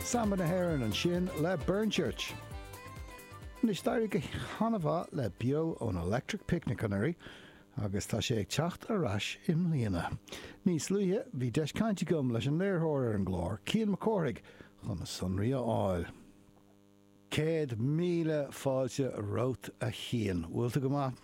Samba na hÉireann ansin le Burnchurch. Anois d'éirigh go han-mhaith le Beo ón Electric Picnic anuraidh agus tá sé ag teacht ar ais i mbliana. Níos luaithe bhí deis caint agam leis an léiritheoir ar an gclár, Cian Mac Cárthaigh, chun na sonraí a fháil. Céad míle fáilte romhat a Chian. Bhfuil tú go maith?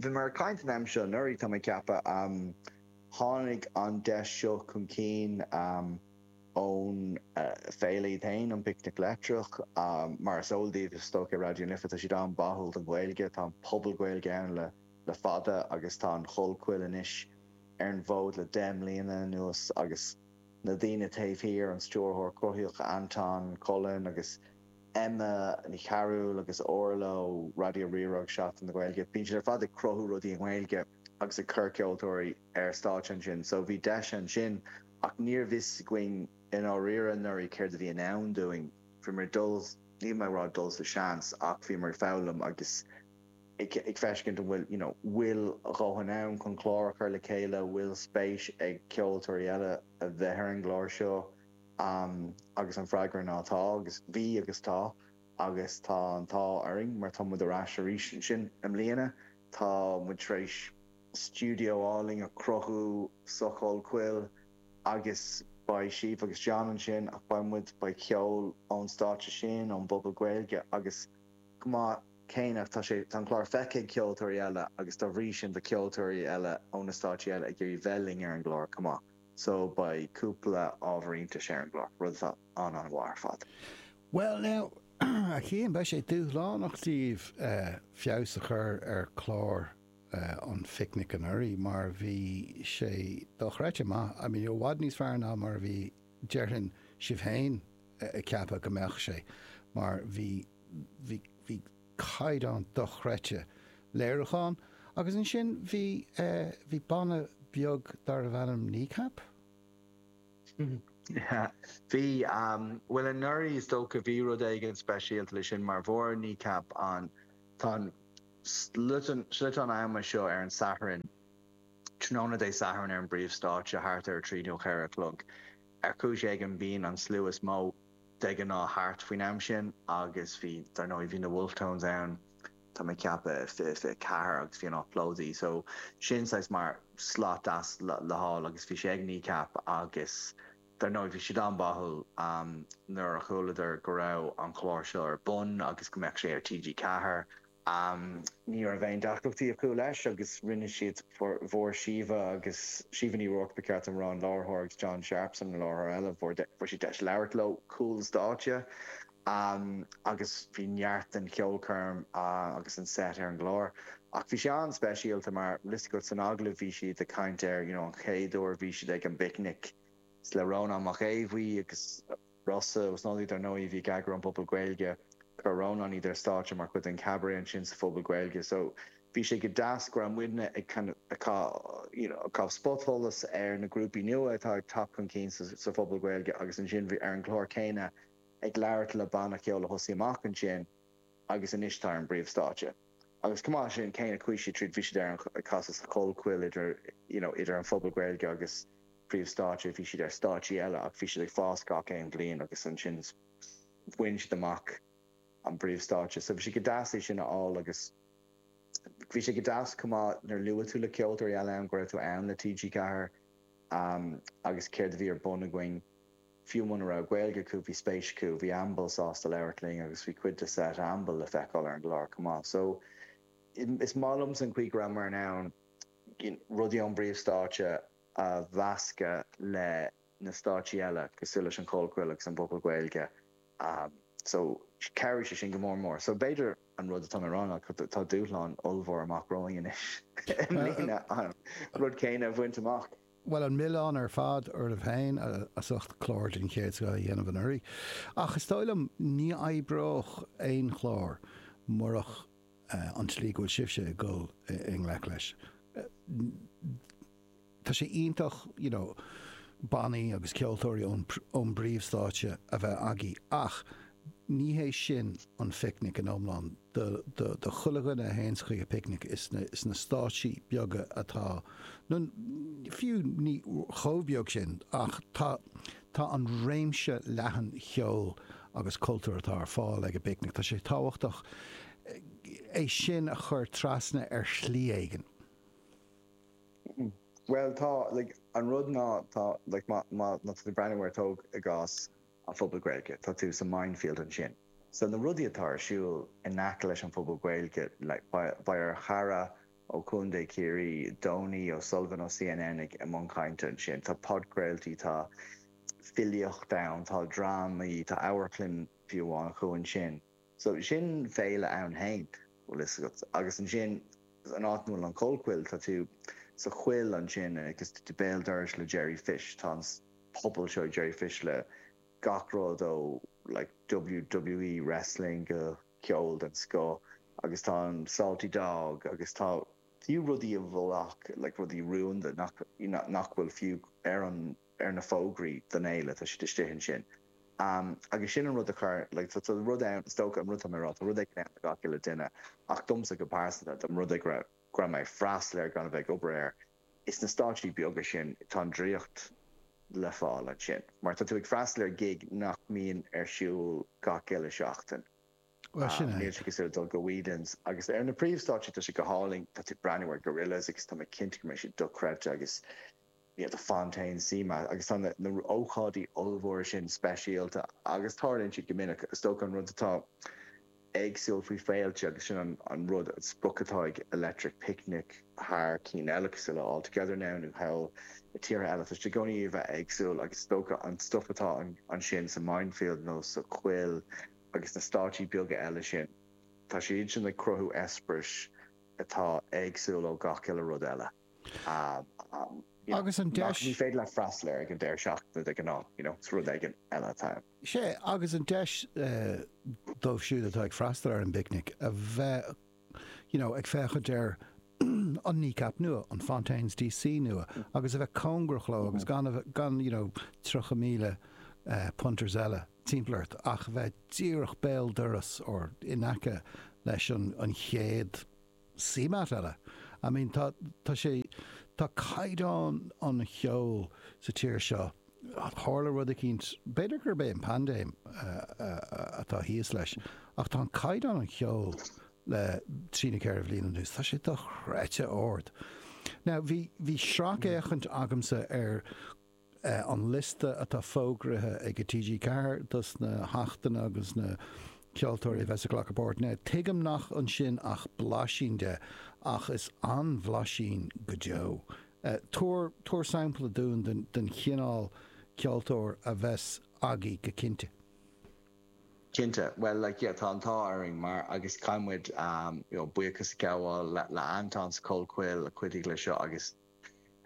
Bhí muid ag caint an am seo anuraidh, tá mé ag ceapadh. Tháinig an deis seo chun cinn ón Féile iad féin, an Picnic Leictreach. Mar is eol daoibh, a stócaigh Raidió na Life, tá siad an-bháúil don Ghaeilge, tá an Puball Gaeilge ann le fada agus tá an Chollchoill anois ar an bhfód le deich mbliana anuas agus na daoine taobh thiar, an stiúrthóir cruthaitheach Anton Cullen agus. Emma Ní Chearúil agus Orla ó Raidió Rí-Rá agus Seachtain na Gaeilge. Bíonn siad ar fad ag cruthú rudaí i nGaeilge agus ag cur ceoltóirí ar stáitse ansin so bhí deis ansin ach níorbh fhios againn i ndáiríre anuraidh céard a bhí i ndán dúinn. Bhíomar ag dul, níl mé ag rá dul sa seans ach bhíomar ag foghlaim agus ag ag feiscint an bhfuil you know bhfuil a dhóthain ann chun clár a chur le chéile, bhfuil spéis ag ceoltóirí eile a bheith ar an gclár seo. Am agus an freagra ná tá agus bhí agus tá agus tá an t-ádh orainn mar tá muid ar ais arís ansin i mbliana. Tá muid tar éis stiúideo álainn a chruthú sa Chollchoill agus beidh Síomha agus John ansin ach beidh muid, beidh ceol ón stáitse sin, ón bpuball Gaeilge agus chomh maith céanna tá sé, tá an clár feicthe ag ceoltóirí eile agus dá bhrí sin beidh ceoltóirí eile ó na stáitsí eile ag iarraidh bheith linn ar an gclár chomh maith. So, beidh cúpla ábhar iontais ar an gclár, rud atá an-an-mhaith ar fad. Bhuel, now, a Chian, beidh sé dúshlánach daoibh feabhas a chur ar chlár an Phicnic anuraidh mar bhí sé dochreidte maith, I mean, i bhfad níos fearr ná mar a bhí, déarfainn, sibh féin ag ceapadh go mbeadh sé mar bhí, bhí, bhí, caighdeán dochreidte léiriúcháin. Agus ansin bhí eh, bhí banna beag darbh ainm Kneecap? Bhí, bhuel anuraidh is dócha bhí rud éigin speisialta le sin mar fuair Kneecap an, tá an sliotán ama seo ar an Satharn, tráthnóna Dé Sathairn ar an bpríomhstáitse thart ar a trí nó a ceathair a chlog. Ar chúis éigin bíonn an slua is mó. de ghnáth thart faoin am sin agus bhí, dar ndóigh, bhí na Wolfe Tones ann, tá mé ag ceapadh, i 2024 agus bhí an áit plódaithe so sin saghas mar slot deas le fáil agus bhí sé ag Kneecap agus dar ndóigh bhí siad an-bháúil nuair a chualadar go raibh an clár seo ar bun agus go mbeadh sé ar TG4 am. Ní raibh aon deacrachtaí acu leis agus rinne siad fuair Síomha agus Síomha Ní Ruairc ba cheart dom a rá an láithreoir agus John Sharpson an láithreoir eile. Fuair siad deis labhairt leo, cúl stáitse agus bhí neart den cheolchoirm agus an set ar an gclár. Ach bhí sé an-speisialta mar tá a fhios agat san agallamh bhí siad ag caint ar an chéad uair a bhí siad ag an bpicnic le Rónán Mac Aodha Bhuí agus Rossa Ó Snodaigh, dar ndóigh, bhí ag eagrú an Puball Gaeilge, chuir Rónán iad ar stáitse mar chuid den Chabaret ansin sa Phuball Gaeilge. So bhí sé go deas go raibh muidne ag kind of caitheamh you know caitheamh spotsholas ar na grúpaí nua atá ag teacht chun cinn sa sa Phuball Gaeilge agus ansin bhí ar an gclár céanna ag labhairt le banna ceoil a thosaigh amach ansin agus anois tá ar an bpríomh stáitse agus comh maith le sin kind of chuaigh siad tríd bhí siad ag casadh sa Chollchoill idir you know idir an Phuball Gaeilge agus príomhstáitse bhí siad ar stáitsí eile ach bhí siad ag fás gach aon bhliain agus ansin bhain siad amach an bpríomhstáitse so bhí sé go deas é sin a fháil agus bhí sé go deas chomh maith nuair a luaigh tú le ceoltóirí eile ann go raibh tú ann le TG4 um, agus céard a bhí ar bun againn. Fiú muna raibh Gaeilge acu bhí spéis acu, bhí Amble sásta labhairt linn agus bhí cuid de set Amble le feiceáil ar an gclár chomh maith. So is maith liomsa an chaoi go rabhamar in ann rudaí ón bpríomhstáitse a mheascadh le na stáitsí eile cosúil leis an Chollchoill agus an Puball Gaeilge so chabhraigh sé sin go mór mór. So b'fhéidir an rud atá mé a rá ná tá dúshlán ollmhór amach romhainn anois i mbliana an rud céanna a bhaint amach. bhuel, an milleán ar fad oraibh féin as ucht clár den chéad scoth a dhéanamh anuraidh, ach is dóigh liom ní oibreodh aon chlár murach an tslí go bhfuil sibhse ag dul i ngleic leis. Tá sé iontach you know bannaí agus ceoltóirí ón bpríomhstáitse a bheith agaibh ach ní hé sin an phicnic in iomlán. do, do, do chuile dhuine a théanns chuig an picnic is na, is na stáitsí beaga atá, nó fiú ní chomh beag sin ach tá, tá an réimse leathan cheoil agus cultúr atá ar fáil ag an bpicnic, tá sé tábhachtach é sin a chur trasna ar shlí éigin. Bhuel tá, like, an rud ná tá, like, má, má, má tá tú ag breathnú ar, tóg i gcás, an Phuball Gaeilge, tá tú sa Mindfield ansin. So na rudaí atá ar siúl in aice leis an Phuball Gaeilge, like beidh ár gcara ó Contae Chiarraí, Donie O'Sullivan ó CNN ag i mbun cainte ansin, tá podchraoltaí, tá filíocht ann, tá drámaí, tá amharclann fiú amháin acu ansin. So sin féile ann fhéin bhfuil fhios agat. Agus ansin an áit a bhfuil an Chollchoill tá tú sa choill ansin agus tú béal dorais le Jerry Fish. Tá an puball seo ag Jerry Fish le gach rud ó like WWE wrestling go ceol den scoth agus tá an Salty Dog agus tá fiú rudaí a bhfuil ach like rudaí rúnda nach nach bhfuil fiú ar an ar na fógraí don fhéile, tá siad istigh ansin. Agus sin an rud a chuir, like, tá rud ann, is dócha, an rud atá mé a' rá, tá rud éigin ann do gach uile duine, ach domsa go pearsanta, dá mba rud é, go raibh, go raibh mé ag freastal air gan a bheith ag obair air, is na stáitsí beaga sin, tá an draíocht le fáil ansin, mar tá tú ag freastal ar gig nach mbíonn ar siúl gach uile seachtain. Bhuel, sin é. Níl sé cosúil le dul go Whelan's, agus ar na príomhstáitsí tá sé go hálainn, tá tú ag breathnú ar Gorillaz agus tá mé cinnte go mbeidh siad dochreidte agus, we have the Fontaines, CMAT agus tá na ócáidí ollmhóra sin speisialta agus tarlaíonn siad go minic. Is dócha an rud atá éagsúil faoi féilte agus sin an rud, an sprioc atá ag Electric Picnic thar cinn eile cosúil le All Together Now nó thall i tíortha eile, tá siad i gcónaí a bheith éagsúil agus is dócha an stuif atá ansin sa Mindfield nó sa choill agus na stáitsí beaga eile sin, tá siad sin ag cruthú eispéiris atá éagsúil ó gach uile rud eile. Agus an deis. Nach ní féidir leat freastal ar ag an deireadh seachtaine de ghnáth, you know, is rud éigin eile atá ann. Sea, agus an deis dóibh siúd atá ag freastal ar an bpicnic a bheith, you know, ag féachaint ar an Kneecap nua, an Fontaines DC nua, agus a bheith cóngarach leo agus gan a bheith, gan, you know, tríocha míle punters eile timpeall ort ach a bheith díreach béal doras or in aice leis an chéad. CMAT eile. I mean tá tá sé tá caighdeán an cheoil sa tír seo, tharla rud eicínt, b'fhéidir gurb é an paindéim atá thíos leis, ach tá an caighdeán an cheoil le trí nó ceithre bhliain anuas, tá sé dochreidte ard. Now bhí bhí sracfhéachaint agamsa ar. an liosta atá fógraithe ag TG4 dos na hachtanna agus na ceoltóirí a bheas ag glacadh páirt ann. Tuigim nach ansin ach blaisín de, ach is an-bhlaisín go deo. Tabhair, tabhair sampla dúinn den, den chineál ceoltóir a bheas agaibh go cinnte. Cinnte, bhuel like yeah tá an t-ádh orainn mar agus caithfidh muid you know buíochas a ghabháil le Anton sa Chollchoill a chuidigh le seo agus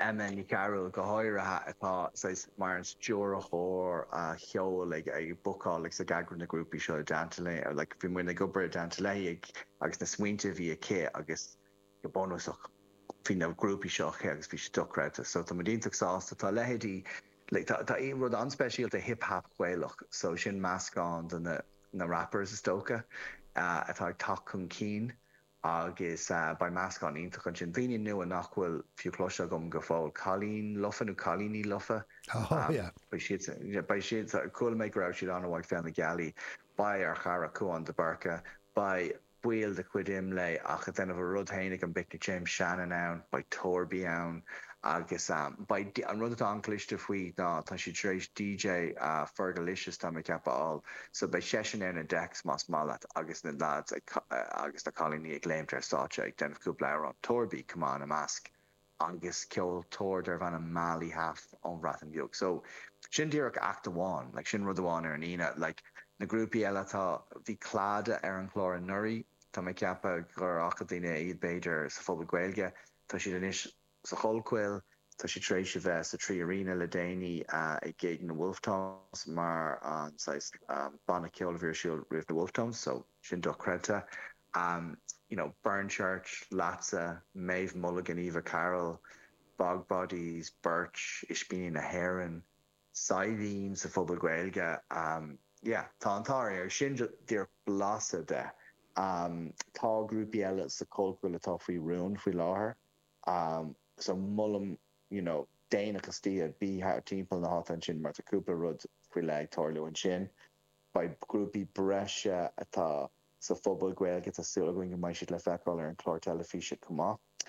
Emma Nic Fhearghail go háirithe atá saghas mar an stiúrthóir ceoil ag bookáil agus ag eagrú na grúpaí seo i dteannta léi or like bhí muidne ag obair i dteannta léi ag agus na smaointe a bhí aici agus go bunúsach bhí na grúpaí seo aici agus bhí siad dochreidte so tá muid iontach sásta tá leithéidí like tá tá rud an-speisialta hip hop Gaelach so sin meascán de na na rappers is dócha atá ag teacht chun cinn Agus beidh meascán iontach ansin. Daoine nua nach bhfuil fiú cloiste agam go fóill. Cailín lofa nó cailíní lofa. Beidh siad sa, beidh siad sa, chuala mé go raibh siad an-mhaith ag Féile na Gealaí. Beidh ár gcara Cuan de Búrca, beidh baill de chuid Imlé ach ag déanamh a rud féin ag an bPicnic, James Shannon ann, beidh Torby ann agus beidh, an rud atá an-chliste faoi ná tá siad tar éis DJ Fergalicious, tá mé ag ceapadh a fháil. So beidh seisean ar na decks más maith leat. agus na lads agus na cailíní ag léimt ar stáitse ag déanamh cúpla amhrán, Torby, chomh maith ina measc, agus ceoltóir darb ainm Mali Hâf ón Bhreatain Bheag. So, sin díreach act amháin, like sin rud amháin ar an Aoine. Like, na grúpaí eile, tá, bhí Clada ar an chlár anuraidh, tá mé ag ceapadh gur fhaca daoine iad b'fhéidir sa Phuball Gaeilge, tá siad anois, sa Chollchoill. Tá siad tar éis a bheith sa 3Arena le déanaí, ag gig na Wolfe Tones mar an saghas banna ceoil a bhí ar siúl roimh na Wolfe Tones so sin dochreidte. You know, Burnchurch, Leatsa, Méabh Mulligan, Eva Carroll, Bog Bodies, Birch, Ispíní na hÉireann, Saidhbhín sa Phuball Gaeilge. Yeah, tá an t-ádh air. Sin díreach blaiseadh de. Tá grúpaí eile sa Chollchoill atá faoi rún faoi láthair. So molaim you know daoine as tí Dé, bí thar timpeall na háite ansin mar tá cúpla rud faoi leith ag tarlú ansin. Beidh grúpaí breise atá sa Phuball Gaeilge, tá súil againn go mbeidh siad le feiceáil ar an chlár teilifíse chomh maith.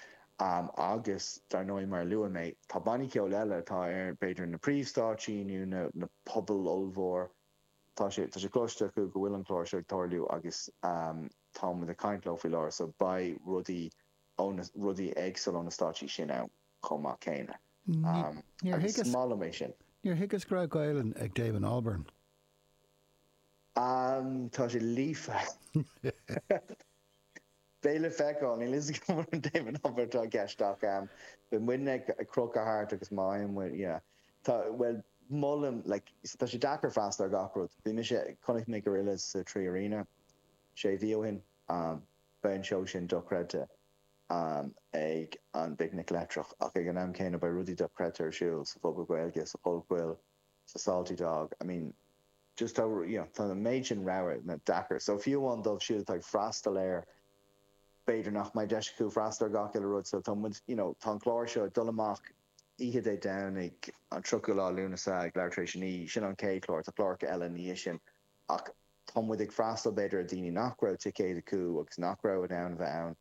Agus dar ndóigh mar a luaigh mé, tá bannaí ceoil eile atá ar b'fhéidir na príomhstáitsí nó na na pubaill ollmhóra, tá sé tá sé cloiste acu go bhfuil an clár seo ag tarlú agus táimid ag caint leo faoi láthair so beidh rudaí ó na rudaí éagsúla, ó na stáitsí sin ann chomh maith céanna. Agus is maith liom é sin. Níor thuigeas go raibh Gaelainn ag Damon Albarn. Tá sé líofa. Beidh le feiceáil. Níl a fhios agam an Damon Albarn atá i gceist ach beidh muidne ag crochadh thart agus má fhaigheann muid, yeah. Tá, bhuel, molaim, like, tá sé deacair freastal ar gach rud. Bhí mise, chonaic mé Gorillaz sa 3Arena sé mhí ó shin. Beidh an seó sin dochreidte ag an bPicnic Leictreach ach ag an am céanna beidh rudaí dochreidte ar siúl sa Phuball Gaeilge, sa Chollchoill, sa Salty Dog, I mean just tá you know tá an méid sin rogha tá sé deacair. So fiú amháin dóibh siúd atá ag freastal air b'fhéidir nach mbeidh deis acu freastal ar gach uile rud so tá muid you know tá an clár seo ag dul amach oíche Dé Domhnaigh an 30ú lá Lúnasa ag leathuair tar éis a naoi, sin an chéad chlár, tá cláracha eile i ndiaidh sin. Ach tá muid ag freastal b'fhéidir ar dhaoine nach raibh ticéid acu agus nach raibh in ann a bheith ann.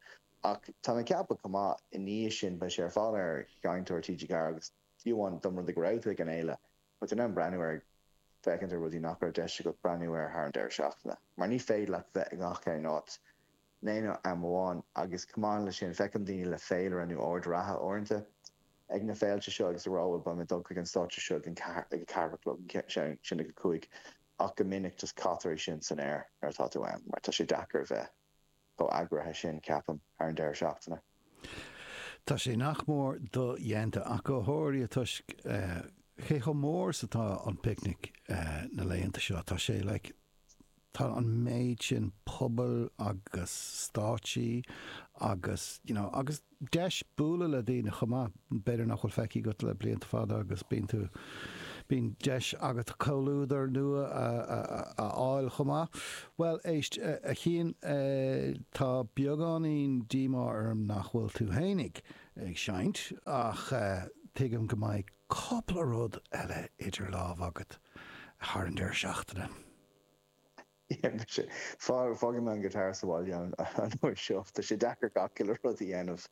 Ach táim ag ceapadh chomh maith i ndiaidh sin beidh sé ar fáil ar sheinnteoir TG4 agus fiú amháin dá mba rud go raibh tú ag an fhéile, beidh tú in ann breathnú air ag féachaint ar rudaí nach raibh deis agat breathnú air thar an deireadh seachtaine. Mar ní féidir leat bheith i ngach aon áit. In aon am amháin. Agus chomh maith leis sin, feicim daoine le féilire nó ord reatha uaireanta ag na féilte seo agus ag rá bhuel, beidh mé ag dul chuig an stáitse seo ag an ceathair, ag a ceathair a chlog, ansin ag a cúig. Ach go minic, just caithtear é sin san aer nuair atá tú ann mar tá sé deacair a bheith chomh eagraithe sin, ceapaim, thar an deireadh seachtaine. Tá sé nach mór dodhéanta ach go háirithe toisc cé chomh mór is atá an Picnic na laethanta seo. Tá sé like, tá an méid sin pobail agus stáitsí agus you know, agus deis bualadh le daoine chomh maith. B'fhéidir nach bhfuil feicthe agat le blianta fada agus bíonn tú, bíonn deis agat comhluadar nua a fháil chomh maith. Bhuel, éist, a Chian, tá beagáinín díomá orm nach bhfuil tú féin ag seinnt ach tuigim go mbeidh cúpla rud eile idir lámh agat thar an deireadh seachtaine. Fágfaidh mé an guitar sa bhaile an uair seo. Tá sé deacair gach uile rud a dhéanamh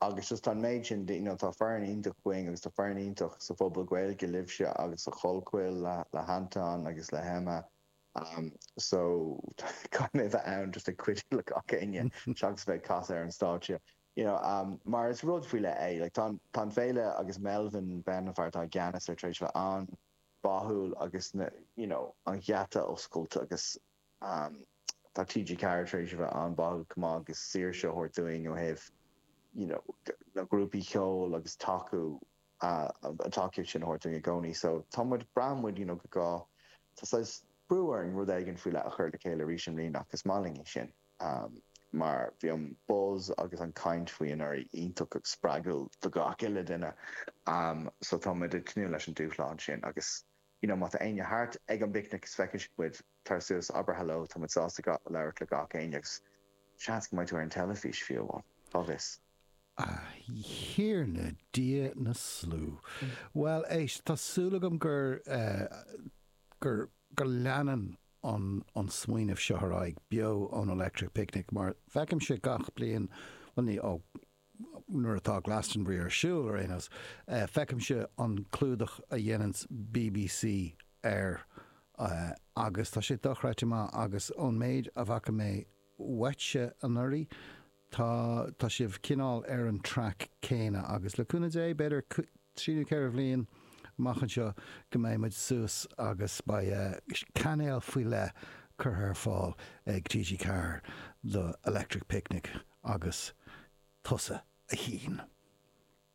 agus just tá an méid sin de, you know, tá foireann iontach againn agus tá foireann iontach sa Phuball Gaeilge, libhse agus sa Chollchoill le, le hAnton agus le hEmma. So, caithfidh mé bheith ann just ag cuidiú le gach éinne seachas bheith ag casadh ar an stáitse, you know, mar is rud faoi leith é. Like, tá an, tá an Féile agus Melvin Benn, an fear atá i gceannas air, tar éis bheith ann. báúil agus na you know an gheata oscailte agus ehm tá TG Ceathair tar éis a bheith an-báúil chomh maith agus saoirse a thabhairt dúinn ó thaobh you know na grúpaí ceoil agus tacú ah an tacaíocht sin a thabhairt dúinn i gcónaí so tá muid braitheann muid you know go gá tá saghas brú orainn rud éigin faoi leith a chur le chéile arís i mbliana ach is maith linn é sin. amh, mar bhí an buzz agus an chaint faoi anuraidh iontach spreagúil do gach uile duine. So tá muid ag tnúth leis an dúshlán sin agus you know má tá éinne thart ag an bPicnic is má fheiceann siad muid, tar suas, abair hello, tá muid sásta labhairt le gach éinne agus seans go mbeidh tú ar an teilifís fiú amháin, cá bhfios. A Thiarna Dia na slú. Bhuel éist, tá súil agam gur eh, gur, go leanann, an smaoineamh seo ar aghaidh beo ón Electric Picnic mar feicimse gach bliain, bhuel ní, ó, nuair atá Glastonbury ar siúl ar aon nós, feicimse an clúdach a dhéananns bbc air agus tá sé dochreidte maith agus ón méid a bhfaca mé uaitse anuraidh, Tá, tá sibh cineál ar an track céanna agus le cúnamh Dé, b'fhéidir trí nó ceithre bhliain amach anseo go mbeidh muid suas agus beidh cainéal faoi leith curtha ar fáil ag TG Ceathair do Electric Picnic agus tusa a Chian.